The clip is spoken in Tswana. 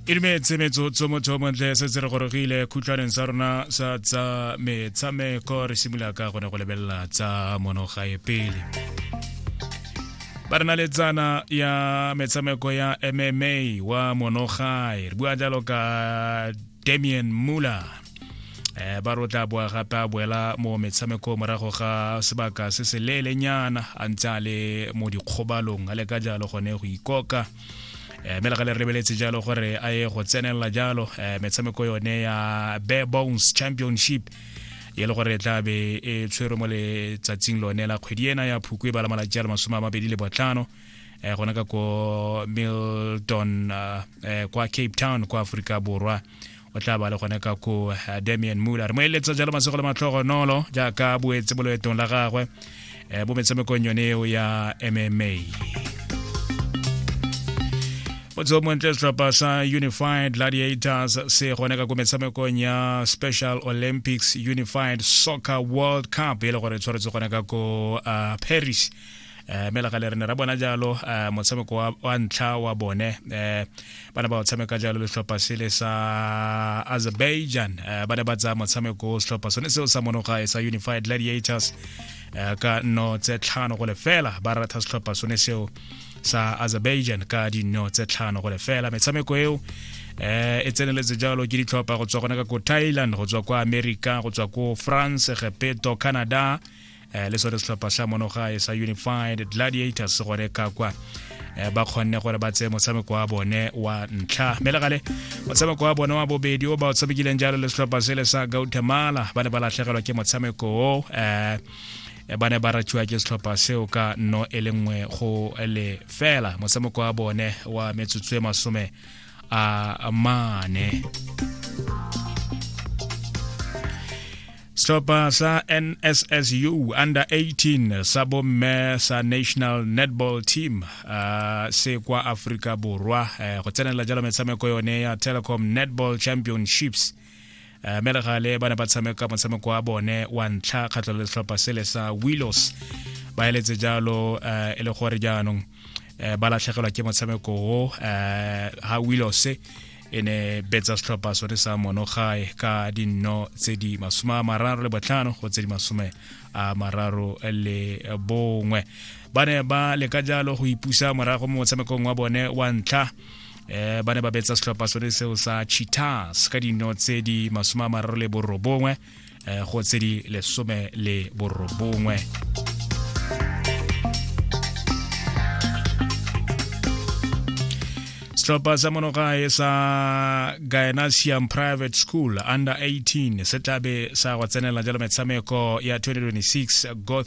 e dumetse metsotso motho o montle se se re gorogile khutlwaneng sa rona sa tsa metshameko re simolola ka gone go lebelela tsa monogae pele ba re na le tsana ya metshameko ya mma wa monogae re bua jalo ka damian muller eh ba ro tla boa gape a boela mo metshameko morago ga sebaka se se leelenyana a ntse a le mo dikgobalong a le ka jalo gone go ikoka eh, mme le ga le rebeletse jalo gore a ye go tsenelela jalo eh, metshameko yone ya bare bones championship e le gore e tla be e tshwerwe mo letsatsing lone la kgwedi ena ya phukwe ba la malatsi a le masome a mabedi le botlhano eh, gona ka ko milton uh, eh, kwa cape town kwa aforika borwa o tla ba le gone ka ko uh, eh, damian muller re mo eletsa jalo masego le matlhogonolo jaaka boetse bo loetong la gagwe eh, bo metshamekong yone eo ya mma motho montle setlhopha sa unified gladiators se gone ka ko metshamekong ya special olympics unified soccer world cup e le gore tshwaretse gone ka ko uh, paris um mme lagale re ne ra bona jalo um motshameko wa ntlha wa bone um ba ne ba o tshameka jalo letlhopha sele sa azerbaijan um ba ne ba tsaya motshameko o setlhopha sone seo sa monogae sa unified gladiators um ka nno tse tlhano go lefela ba ratha setlhopha sone seo sa azerbaijan ka dinno tse tlhano go lefela metshameko eo eh e tseneletse jalo ke ditlhopha go tswa gone ka ko thailand go tswa kwa america go tswa ko france gepeto canada um le sone setlhopha sa monogae sa unified gladiators gone ka kwa Eh, ba kgonne gore ba tseye motshameko wa bone wa ntlha mme legale motshameko wa bone wa bobedi o ba o tshamekileng jalo le setlhopha sele sa gautemala ba ne ba latlhegelwa ke motshameko o um eh, eh, ba ne ba ratsiwa ke setlhopha seo ka no e le nngwe go le fela motshameko wa bone wa metsotso e masome a mane setlhopha sa nssu under 18 sa bomme sa national netball team uh, se kwa aforika borwa uh, go tsenela jalo metshameko yone ya telecom netball championships uh, eh, melegale ba ne ba tshameka motshameko wa bone wa ntlha kgatlho le setlhopha sele sa willows ba eletse jalo uh, e le gore jaanong uh, ba latlhegelwa ke motshameko o uh, ha willows e ne betsa setlhopha sone sa monogae ka dinno tse di masome a mararo le botlhano go tse di masome a mararo le bongwe ba ne ba leka jalo go ipusa morago mo motshamekong wa bone wa ntlha um ba ne ba betsa setlhopha sone seo sa cheetahs ka dino tse di masome a mararo le borobongwe eh, go tse di lesome le borobongwe setlhopha sa monogae sa gynasium private school under 18 se tlabe sa go tsenela jalo metshameko ya 2026 goth